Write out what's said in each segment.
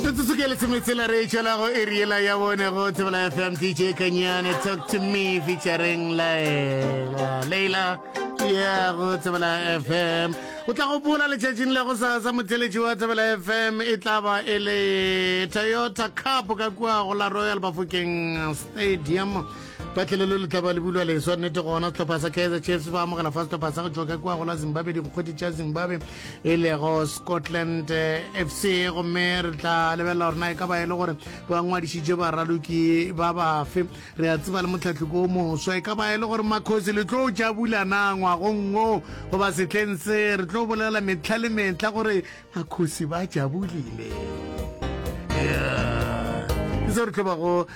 metsotso ke lesometsela re tšwela go eriela ya bone go tsebela fm dj kanyane talk to me featuring laela leila ya go tsebela fm o tla go bola letšatšing la go sasa motheletši wa tsebela fm e tla ba e le toyota cup ka kua go la royal bafokeng stadium patlelo le letlaba le bulwa leswa nnete gona setlhopha sa kaizer chiefs ba amogela fa setlhopha sa go tšwa ka kua go la zimbabwe dikgwedi tša zimbabwe e lego scotland fc gomme re tla lebelela gore na e ka ba e le gore ba ngwadišitše baraloki ba bafe re a tseba le motlhatlhoko o moswa e ka ba e le gore makgosi le tlo tša bulana ngwagongo goba setlheng se re tlo bolela metlha le metlha gore makgosi ba tšabulile yeah. ke se re tlo bago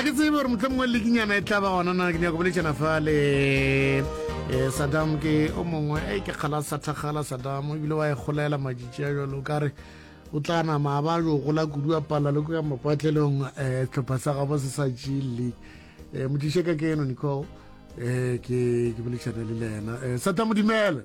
a ke tsebe gore motlho mongwe lekinyana e tla ba gona na ke nyako boletšana fa le um sadam ke o mongwe e ke kgala sathakgala sadam ebile wa e golela majitši a jalo o kare o tla nama a ba jo gola kudu a palla le ko ya mapatlelong um eh, tlhopha sa gabo se sa g league um eh, modiše ka ke eno nicole um ke ke bolešana le le ena um eh, sata modimele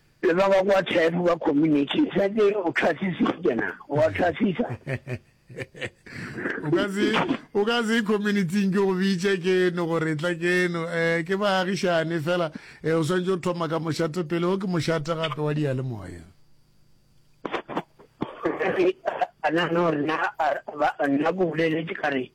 Le ba ba kwa Tshepo ba community sa ke o tlhasisitše na? O a tlhasisa. O ka se o ka se community-ing ke go bitše ke no gore tla ke no eh ke baagišane fela eh o swantse o thoma ka mošate pele o ke mošate gape wa dia le moya. Ana no rena ba nna go boleletše ka re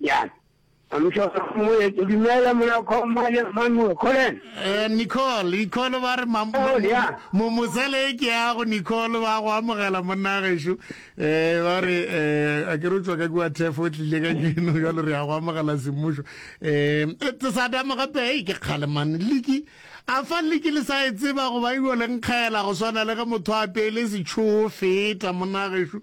Bjang? A mohlolo wa moya. Ke dumela mona Khomane Manuel Kholen. Eh, Nicole, Nicole ba re mam- Oh, ya. mo mosele e ke ya go Nicole ba go amogela monna gešo. Eh, ba re eh a ke re o tswa ka kwa thefo o tlile ka keno jalo re ya go amogela semmušo. Eh, eh, tse sa dama gape hey, ke kgale man. Liki a fa liki le sa e tseba go ba ilo le nkgela go swana le ge motho a pele setsho feta monna gešo.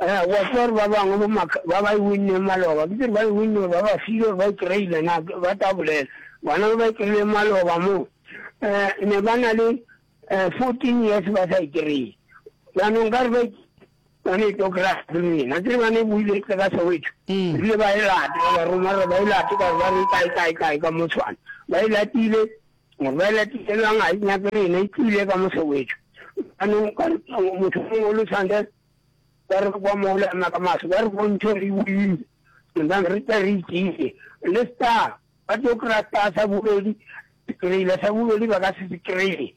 Eh, wa tseba gore ba bangwe bo maka ba ba e winneng maloba ke tsere ba e winne gore ba ba file gore ba e kry-ile na ba tla bolela bona ba e kry-ile maloba moo um ne ba na le um fourteen years ba sa e kry-e jaanong ka re ba ba ne e tlo kry-a le lena tsere ba ne e buile tle ka soweto ebile ba e late ba ba roma gore ba e late ka ba re kae kae kae ka motshwane ba e latile Bjale Tumello ga e nyake rena, e tlile ka Mosewetšo. Jaanong ka re motho mongwe o le tshwantse ba re kwa mola ya maka maso ba re bontšhe re buile nna re tla re itsile le star ba tlo kry-a star sa bobedi kry-ile sa bobedi ba ka se se kry-e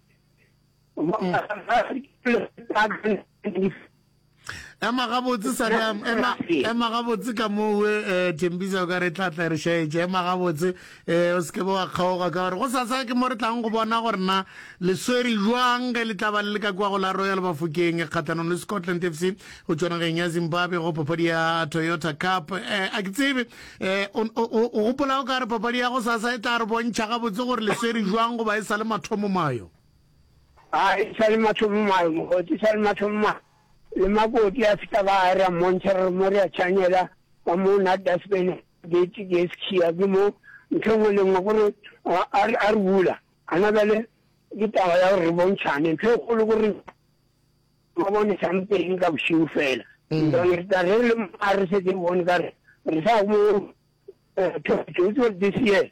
ema gabotse sadam ema ema gabotse ka moo we eh, thembisa o ka re tla tla re shaetse ema gabotse um o se kebe wa kgaoga ka gore go sasa ke mo re tlang go bona gore na le swere jwang ge le tlaba le le ka kwa go la royal bafokeng kgathanong le scotland f c go tswanageng ya zimbabwe go papadi ya toyota cup um a ke tsebe um o gopola o ka re papadi ya go sasa e tla re bontšha gabotse gore le swere jwang goba e sa le mathomo mayo A e sa le mathomo a mokoti, e sa le mathomo a le makoti a feta ba a ra mmontšha re mo re a tšhanyela ka mo na dustbin gate ke sekhia ke mo ntho engwe le engwe gore a re a re bula ana bale ke taba ya gore re bontšhane ntho e kgolo gore ba bone sampeng ka bošiu fela mm. re tla re le a re setse bone ka re re sa mo eh, thotse this year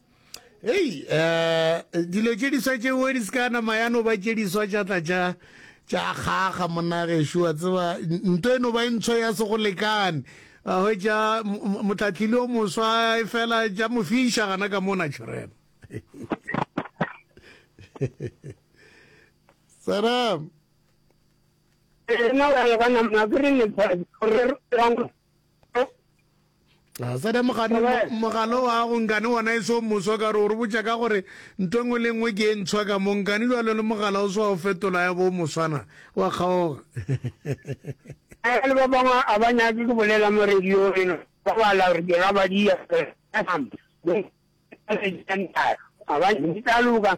hei um dilo tše diswa tšeo di seka nama ya no ba tše diswa tša tla tša tša kgaga monagešu wa tseba nto e no ba e ntsho ya se go lekane a hwetša motlatlile o moswa e fela tša mo fiša gana ka mona tšhorena saram ena wa lebana mabiri ne gore Sada mogane mogalo wa go nkane wona e so moswa ka gore o re botša ka gore nto nngwe le nngwe ke e ntshwa ka mo nkane jwalo le mogala o swa o fetola ya bo moswana wa kgaoga le ba bangwe a ba nyake ke bolela mo radio eno ba bala gore ke gabadia a ba ntitaloka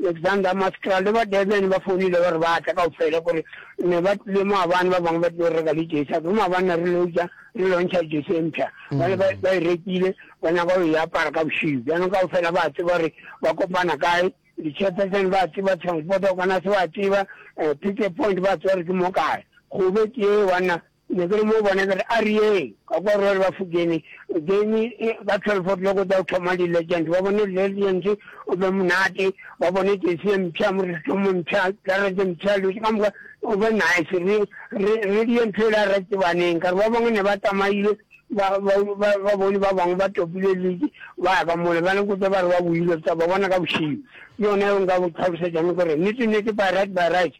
Alexander, Maskra le ba Durban ba founile ba re ba tla kaofela kore ne ba tlile maabane ba bangwe ba tlile go reka le jersey a kere maabane na re leutša re lontšha jersey e mpsha bale ba ba e rekile ba nyaka go e apara ka bošiu bjanong kaofela ba tseba gore ba kopana kae di-chairperson ba tseba transport organise ba tseba eh, picket point ba tseba gore ke mo kae gobe ke ye banna Ne ke le mo bona ke re, A re yeng! Ka kwa Royal Bafokeng, game ka twelve o'clock o tla thoma di-Legends. Ba bone di-Legends, go be monate. Ba bone jersey e mpsha, morethetho o mpsha, karete e mpsha, dilo tše ka moka. Go be nice. Re, re, re die ntho e le ya Ratebaneng. Ka re ba bangwe ne ba tsamaile, ba, ba, ba, ba bone ba bangwe ba topile league, ba ya ka mole. Ba ne kotse ba re ba boile, re tla ba bona ka bošego. Ke yona yeo nka go tlhalosetšang ke gore nnete-nnete by right, by right.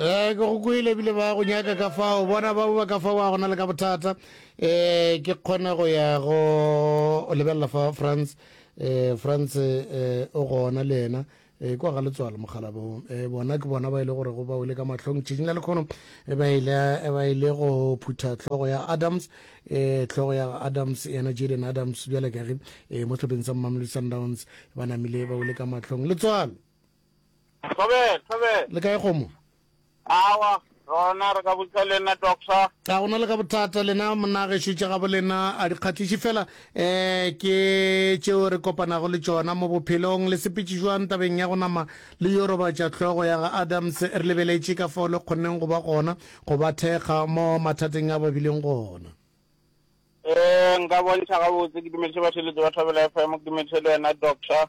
Eh ke go kwele bile ba go nyaka ka fao bona ba ba ka fao a gona le ka bothata eh ke kgona go ya go lebelela fa France eh France eh o gona le yena eh kwa ga letswalo mogalabo eh bona ke bona ba ile gore go ba ile ka mahlong tšhinyela le khono e ba ile e ba ile go phutha tlhogo ya Adams eh tlhogo ya Adams yena Jaden Adams bjale ka re eh mo tlhopheng sa Mamelodi Sundowns ba namile ba ile ka mahlong letswalo Thobela, Thobela. Le kae kgomo? Awa, rona re ka botsa le nna doctor. Ga gona le ka bothata lena monna gešo tša gabo lena a di kgatliše fela um ke tšeo re kopanago le tšona mo bophelong. Le sepetše jwang tabeng ya go nama le yo robatša hlogo ya ga Adams? Re lebeletše ka fao le kgonneng go ba gona go ba thekga mo mathateng a ba bileng gona. Um nka bontšha gabotse. Ke dumediše batheeletši ba Thobela FM, ke dumediše le wena doctor.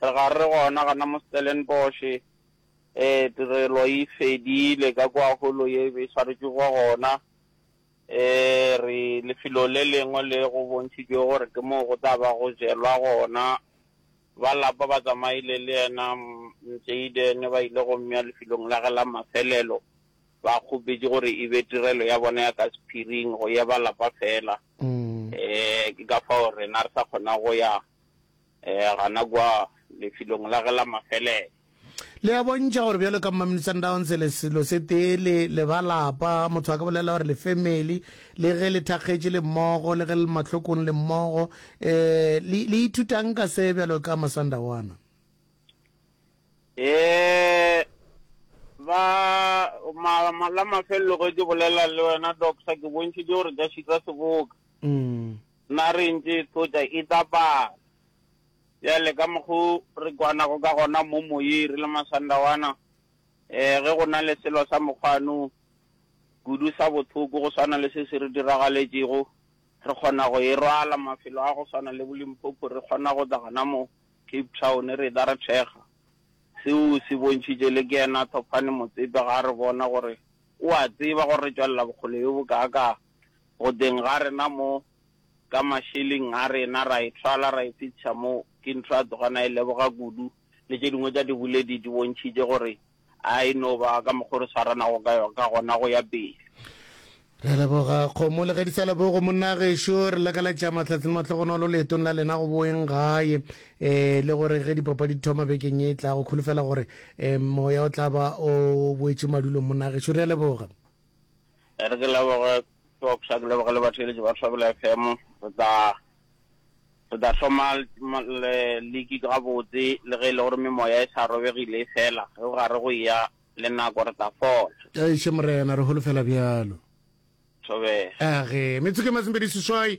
Re ga re gona gana mo Stellenbosch. Ee, tirelo e fedile ka kwa holo ye e be e swaretšwe kwa gona. Ee, re lefelo le lengwe le go bontšhitšwego gore ke moo go tla ba go jelwa gona. Ba lapa ba tsamaile le yena Mjayden ba ile go mmea lefelong la ge la mafelelo. Ba kgopetše gore e be tirelo ya bona ya ka sephiring go ya ba lapa fela. Ee, ke ka fao rena re sa kgona go ya Ee, gana kwa, lefelong la ge la mafelelo. Le a bontšha gore bjalo ka Mmamini Sundowns le selo se tee, le, le ba lapa. Motho a ka bolela gore le family. Le ge le thakgetše le mmogo, le ge le le mahlokong le mmogo. Um, le, le ithuta'ng ka se bjalo ka Masandawana? Ee, ba, ma, ma, la mafelelo ge ke bolela le wena, Doctor, ke bontšhitše gore ka šika seboka. Na re ntše tlotša e tla pala? Bjale, ka mokgo re kwanago ka gona mo moyeng re le masandawana, ee, ge go na le selo sa mokgwano kudu sa bohloko go swana le se se re diragaletšego, re kgona go e rwala mafelo a go swana le bo-Limpopo, re kgona go tla gona mo Cape Town, re etla re thekga. Seo o se bontšhitše, le ke yena Thofane Motsepe, ga a re bona gore o a tseba gore re tšwelela bokgole bjo bokaakaa. Godeng ga rena mo, ka mašeleng a rena, ra e thwala ra e fetša mo. Ke ntho a tloga na e leboga kudu, le tše dingwe tša diboledi di bontšhitše gore a e no ba ka mokgwa o re swaranago ka ka gona go ya pele. Re leboga kgomo le ge di sa lebogo monna gešo. Re lakaletša mahlatse le mahlogonolo leetong la lena go boeng gae, e le gore ge dipapadi di thoma bekeng e tlago, kholofela gore e moya o tla ba o boetše madulong monna gešo. Re a leboga. E re ke leboge Fox, a ke leboge le batheeletši ba Thobela FM. Re tla re tla hloma le liki gabotse le ge e le gore memoya e sa robegile e fela ge gare go ya le nako re tla fola. Eish Morena re holofela bjalo. Thobela. Age, metsotso ke masomepedi seswai